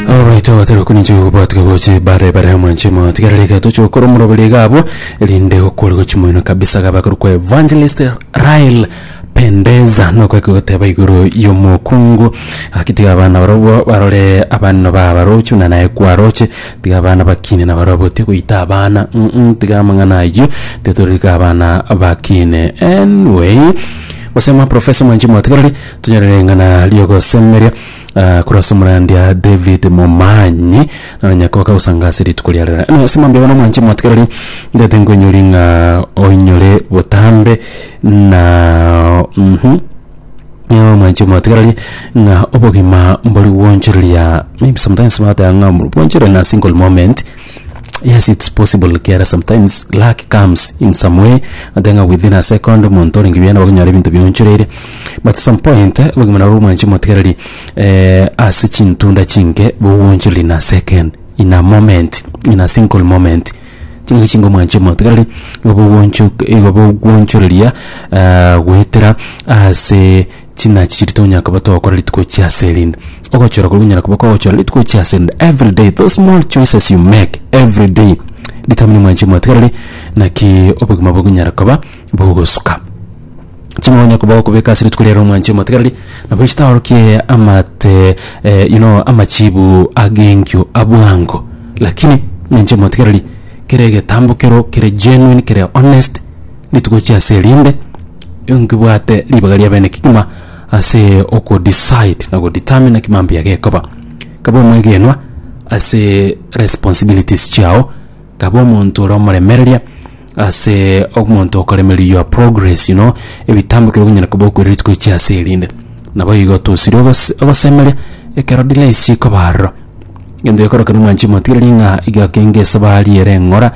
Alright, abatera okuninche gokobwatika goche bare bare amo nche mo tigarereka toche gokora omoroberi gabo rinde okore gochi moino kabisa gaba kuri kwa evangelist Rael pendeza nokwe kogoteba igoro yomokungu akitiga abana barobo barore abana ba barochu na naye kwaroche tiga abana bakine na barobo tigoita abana mm -mm, tiga amang'ana ayio tetorika abana bakine anyway gosema professor mwanchi mwatigareri Tonyorere ring'ana riogosemeria ah, korwa ase omorandia David Momanyi naro nyakoka gosanga ase rituko ria rera. Eno ase mambia bono mwanche mwatigereri ndete nkoinyori ng'a oinyore botambe na mhm Nio mwanche mwatigereri ng'a obogima mbori gwonchoreria maybe sometimes bateba ng'a bwanchorera na single moment yes it's possible kiara sometimes luck comes in some way ate ng'a within a second omonto orenge buya nabo okonyora ebinto bionchoreire But some point obogima nabwo bwanche motigereri eh, ase chintunda chinke boguonchoreri in a second in a moment in a single moment chingaki chingo mwanche motigereri igo boguonchoreria eh, goetera ase chinachi chiri tonyaka koba togokora rituko chia ase erinde ogochora koria onyara koba kogochora rituko chia ase erinde every day those small choices you make every day determine mwanche motigereri naki obogima bogonyara koba bogosuka Ching'onya koba okobeka ase rituko riare omwanchi omotegereri, nabo chitaorokie amate eh, you know, amachiibu ag'enkio abwango. Lakini omwanchi omotegereri, kera egetambo kero kere genuine, kere honest, rituko chia ase erinde, nkebwate ribaga ria bene kegima ase oko decide na go determine naki mambuya gekoba. Kaba omwegenwa ase responsibilities chiao. Taba omonto ore omoremereria ase omonto okoremereria your progress you know ebitambo kero binyare koba okoira rituko echi ase erinde naboigo tosiri ogose ogosemeria ekero delays chikoba aroro gento gekoro kero mwanchi motigereria ng'a iga kenge esabari ere eng'ora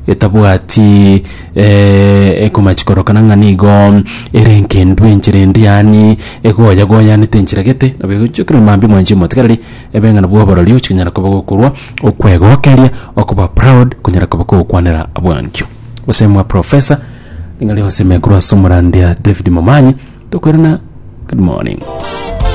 etabwati ekomach korokana ng'a nigo ere enkendu enchera endi yaani egoyagoyanete enchera gete nabo egochia okirora mambia mwanchi motigereria. Ebeng'ina bw'oborori ochikonyara koba gokorwa okwegokeria, okoba proud, konyara koba kogokwanera bwankio. Gose mwa professor, ring'ana rionsi ime korwa ase omorandia David Momanyi, tokoirana, good morning.